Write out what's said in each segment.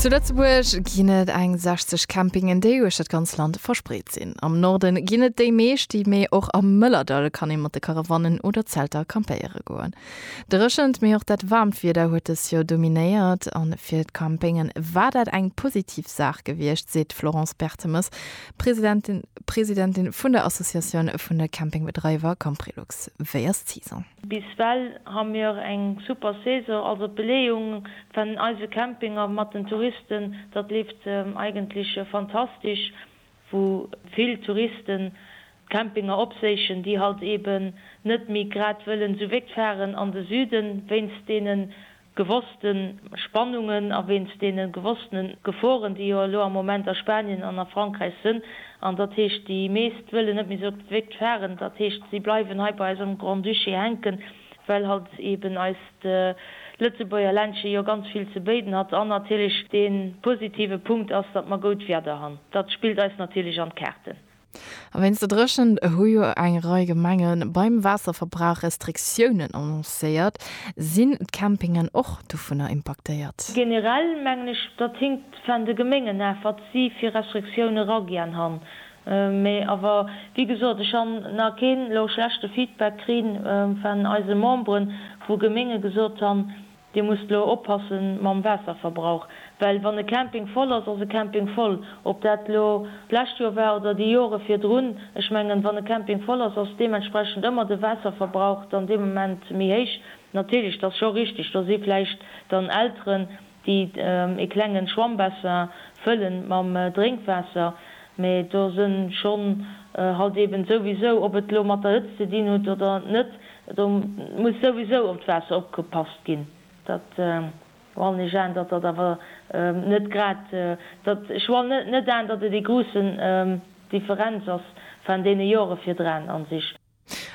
Zu Lëtzebuerg ginn et eng 60 Campingen, déi uechter d'ganz Land verspreet sinn. Am Norde ginn et déi meescht, mee och am Mëllerdall kann ee mat de Karawannen oder Zelter campéiere goen. Dréchent, mee och dat waarmt Wieder huet dës Joer dominéiert a fir d'Campinge war dat eng positiv Saach gewiescht, seet d'Florence Bertemes, Presidentin Presidentin vun der Associatioun vun de Campingbedreiwer Camprilux. Wéi ass d'Saison? Bis well ha mir eng super Saison, also d'Beleeung van eise Campinger mat den Touristen, datt leeft eigentlech fantastisch, wou vill Touristen d'Campinger opséichen, déi halt eben net méi grad wëllen su wégt faaren an de Süden, wéinst deenen gewosste Spannungen a wéinst deene gewosstene Geforen, déi jo elo am Moment a Spanien an a Frankräich sënn. An dat heescht, déi meescht wëllen net méi esou op d'Wéckt faren. Dat heescht, si bleiwen hei bei eis am Grand-Duché hänken, well halt eben eist Lëtzebuerger Ländche jo ganz vill ze béiden hat. An natierlech dee positive Punkt ass, datt mer goud Wieder han. Dat spillt eis natierlech an d'Kaarten. A wéinst der Dréchent hu jo eng Rei Gemenge beim Waasserverbrauch Restriktiounen annoncéiert. Sinn d'Campingen och dovunner impaktéiert? Generell mengen ech, datt hinkt vun de Gemengen af, wat si fir Restriktioune eragäan han. Mä awer, wéi gesot, ech han na keen elo schlechte Feedback kri vun eise Memberen, wou Gemenge gesot han, Dir musst lo oppasse mam Waasserverbrauch, well wann e Camping voll ass, ass e Camping voll. Ob dat lo d'lescht Joer war oder déi Jore virdrun, ech mengen, wann e Camping voll ass, ass deementsprechend ëmmer de Waasserverbrauch dann dee Moment méi héich. Natierlech, et ass scho richteg, do si vläicht dann Elteren, déi e klenge Schwammbassin fëlle mam Drénkwaasser, mä do sinn schonn halt eeben souwisou, ob et lo mat der Hëtzt ze dinn hutt oder net, Do muss souwisou op d'Waasser opgepasst ginn. Dat wann ech an, datt dat awer net grad, datt ech wann net an, datt et ee gruussen Differenz ass van deene Jore virdran an sich.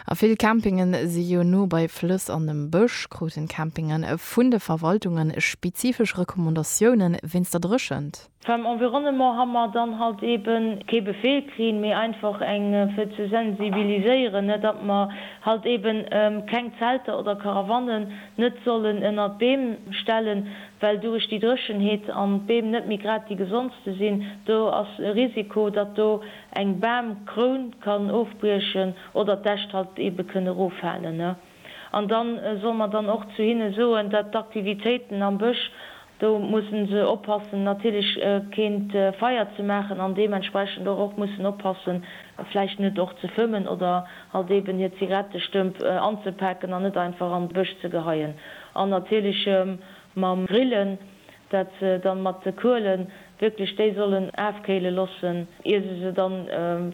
A vill Campingen si jo no bei Flëss an dem Bësch. Kruten d'Campingen vun de Verwaltungen spezifesch Recommandatiounen wéinst der Dréchent? Beim Environnement ha mer dann halt ebe kee Befehl krinn, mee einfach eng fir ze sensibiliséieren, ne, datt mer halt eben keng Zelter oder Karawannen net sollen ënnert d'Beem stellen, well durich déi Dréchenheet an d'Beem net méi grad déi gesondste sinn. Do ass e Risiko, datt do eng Bamkroun kann ofbriechen oder d'Äscht halt ebe kënne roffalen, ne. An da solle mer dann och zu hinne soen, datt d'Aktivitéiten am Bësch, do musse se oppassen natierlech keen Feier ze maachen an deementsprechend och och mussen oppassen vläicht net och ze fëmmen oder halt eeben hir Zigarettestëmp anzepaken an net einfach an de Bësch ze geheien. An natierlech mam Grillen, dat se dann mat de Kuelen wierklech déi sollen aafkéilen lossen ier se se dann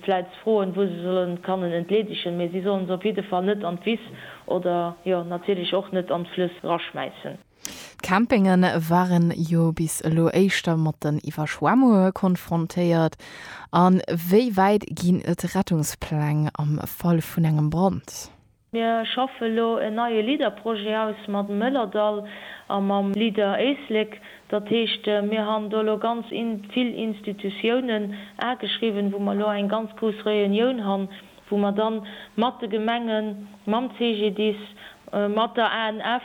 vläits froen wou se sollen kannen entleedegen, mee sie sollen se op jidde Fall net an d'Wiss oder jo natierlech och net an d'Flëss raschmäissen. D'Campingen waren jo bis elo éischter mat den Iwwerschwemmunge konfrontéiert, an wéi wäit ginn et Rettungspläng am Fall vun engem Brand? Mir schaffe elo en neie LEADER-Projet aus mat dem Mëllerdall a mam LEADER Éislek. Dat heescht, mir han do elo ganz vill Institutiounen ageschriwwen, wou mer elo eng ganz grouss Réunioun han, wou mer dann mat de Gemengen, mam CGDIS, mat der ANF,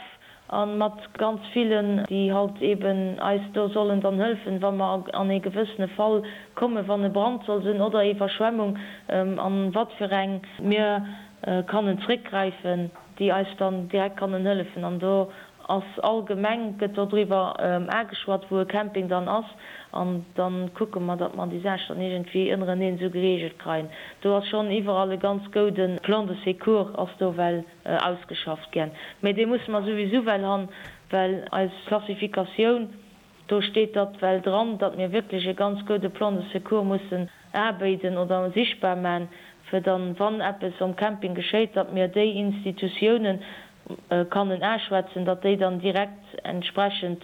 A mat ganz villen, déi halt eben eis do sollen dann hëlfen, wa mer an ee gewëssene Fall kommen, wann e Brand soll sinn oder Iwwerschwemmung, an wat fir eng. Mir kannen zréckgräifen, déi eis dann direkt kannen hëllefen. An do ass all Gemeng, gëtt do driwwer ageschwat, wou e Camping dann ass. An da kucke mer, datt mer déi Saach dann iergendwéi ënnereneen esou gereegelt kreien. Do ass schonn iwwerall e ganz gouden Plan de secours ass do, well. Ausgeschafft gän. Mee dee musse mer souwisou well han, well eis Klassifikatioun, do steet datt well dran, datt mir wierklech e ganz goude Plan de secours mussen abéiden oder sichtbar man, fir dann, wann eppes om Camping geschéit, datt mir déi Institutiounen kannen aschwätzen, datt déi dann direkt entsprechend